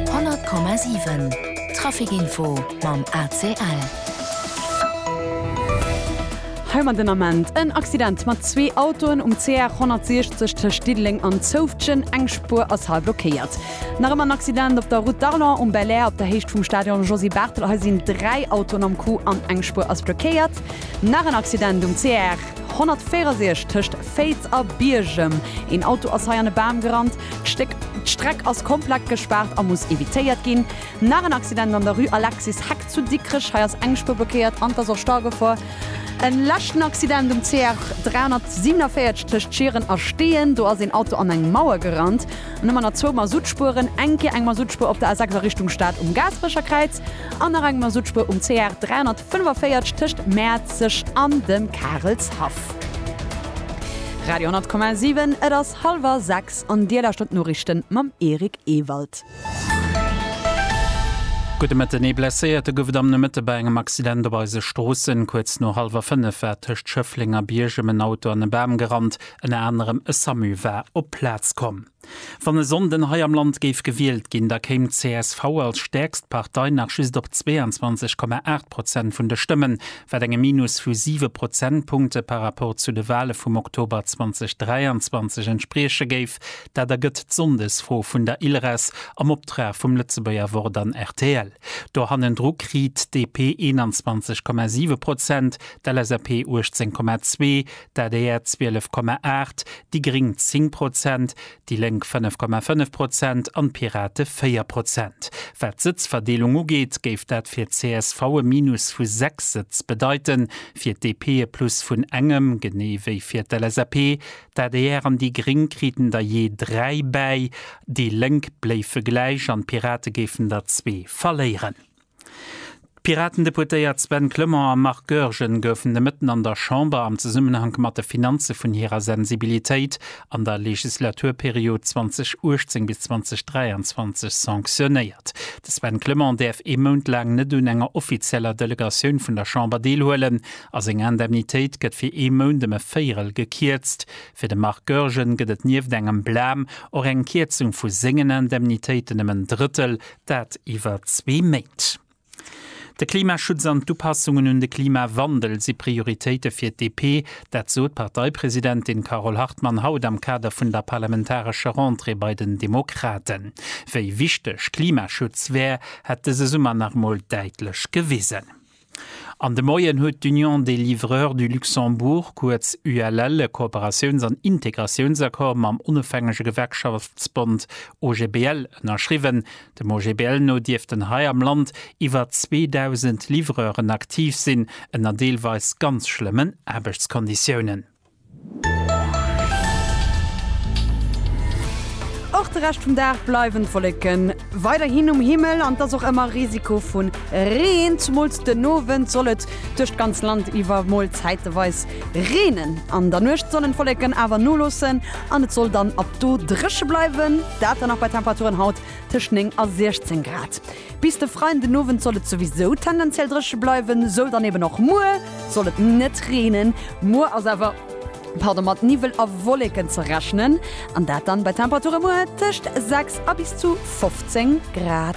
100,7 Trafic Info mam ACL. Hei mam den Ament en Accident mat zwee Autoen um CR 160 tëscht Diddeleng an Zoufftgen. Eng Spuer ass hei blockéiert. Nach ëmmer en Accident op der Route d'Arlon um Belair op der Héicht vum Stadion Josy Barthel. Hei sinn dräi Autoen am Coup an eng Spuer ass blockéiert. Nach en Accident um CR 164 tëscht Féiz a Biergem. Een Auto ass hei an e Bam gerannt. D'Stéck D'Streck ass komplett gespaart a muss evitéiert ginn. Nach en Accident an der Rue Alexis Heck zu Dikrech. Hei ass eng Spuer blockéiert an et ass och Staugefor. En leschten Accident um CR 347 tëscht Schieren a Steeën. Do ass een Auto an eng Mauer gerannt. An ëmmer nach zwou Masuttspueren. Eng Kéier eng Masuttspuer op der A 6 a Richtung Stad um Gaasperecher Kräiz an nach eng Masuttspuer um CR 345 tëscht Mäerzeg an dem Karelshaff. Radio 10,7 Et ass. Halwer 6 an Dir lauschtert d'Noriichten mam Eric Ewald. Gudde Mëtten. Ee Blesséierte gouf et am Nomëtte bei engem Accident op eise Stroossen. Kuerz no hallwer 5 war tëscht Schëffleng a Biergem en Auto an e Bam gerannt. Ënner anerem e Samu war op d'Plaz komm. Wann e Sonnden hei am Land géif gewielt ginn, da kéim d'CSV als stäerkst Partei nach just op 22,8 Prozent vun de Stëmmen. wat engem Minus vu siwe Prozentpunkte par rapport zu de Wahle vum Oktober 2023 entsprieche géif. Dat ergëtt d'Sonndesfro vun der ILRES am Optrag vum Lëtzebuerger Wort an rtl. Do hannendru kritt DP 21,7 Prozent, d'LSAP 18,2, d'ADR 12,8, déi Gréng 10 Prozent, déi Lénk 5,5 Prozent an d'Pirate 4 Prozent. Wat d'Sëtzverdeelung ugeet, géif dat fir csv e Minus vu 6 Sëtz bedeiten, fir d'DP e Plus vun engem, genee wéi fir d'LSAP. D'adr an déi Gréng kriten der jee 3 bäi, déi Lénk bléife gläich an d'Pirate géifen der zwee verléieren. D'Piraten-Deputéiert Sven Clement a Marc Goergen goufen de Mëtten an der Chamber am Zesummenhank mat de Finanze vun hirer Sensibilitéit an der Legislaturperiod 2018 bis 2023 sanctionéiert. De Sven Clement däerf ee Mount laang net un enger offizieller Delegatioun vun der Chamber deelhuelen a seng Indemnitéit gëtt fir ee Mount ëm e Véierel gekierzt. Fir de Marc Goergen gëtt et nieft engem Blam och eng Kierzung vu sengen Indemnitéiten ëm en Drëttel, Dat iwwer zwee Méint. De Klimaschutz an d'Upassungen un de Klimawandel si Prioritéite fir d'DP. Dat sot d'Parteipresidentin Carole Hartmann haut am Kader vun der parlamentarescher Rentrée bei den Demokraten. Wéi wichteg Klimaschutz wär, hätt dëse Summer nach emol däitlech gewisen. An de Moien huet d'Union des livreurs du Luxembourg, kuerz ULL, e Kooperatiouns an Integratiounsaccord mam onofhängege Gewerkschaftsbond OGBL ënnerschriwwen. Dem OGBL no dierften hei am Land iwwer 2.000 Livreuren aktiv sinn, ënner deelweis ganz schlëmmen Aarbechtskonditiounen. Och de Rescht vum Dag bleiwen d'Wolleken weiderhin um Himmel an et ass och ëmmer Risiko vu Reen. Zumools den Owend soll et duerch d'ganz Land iwwer mol zäiteweis reenen. An der Nuecht sollen d'Wolleken awer noloossen an et soll dann ab do dréche bleiwen, dat dann nach bei Temperaturen haut tëscht 9 a 16 Grad. Bis de Freien den Owend soll et souwisou tendenziell dréche bleiwen, soll dann eben och muer soll et net reenen. Muer ass awer, pardon, mat Niwwel a Wolleken ze rechnen, an dat dann bei Temperature muer tëscht 6 a bis zu 15 Grad.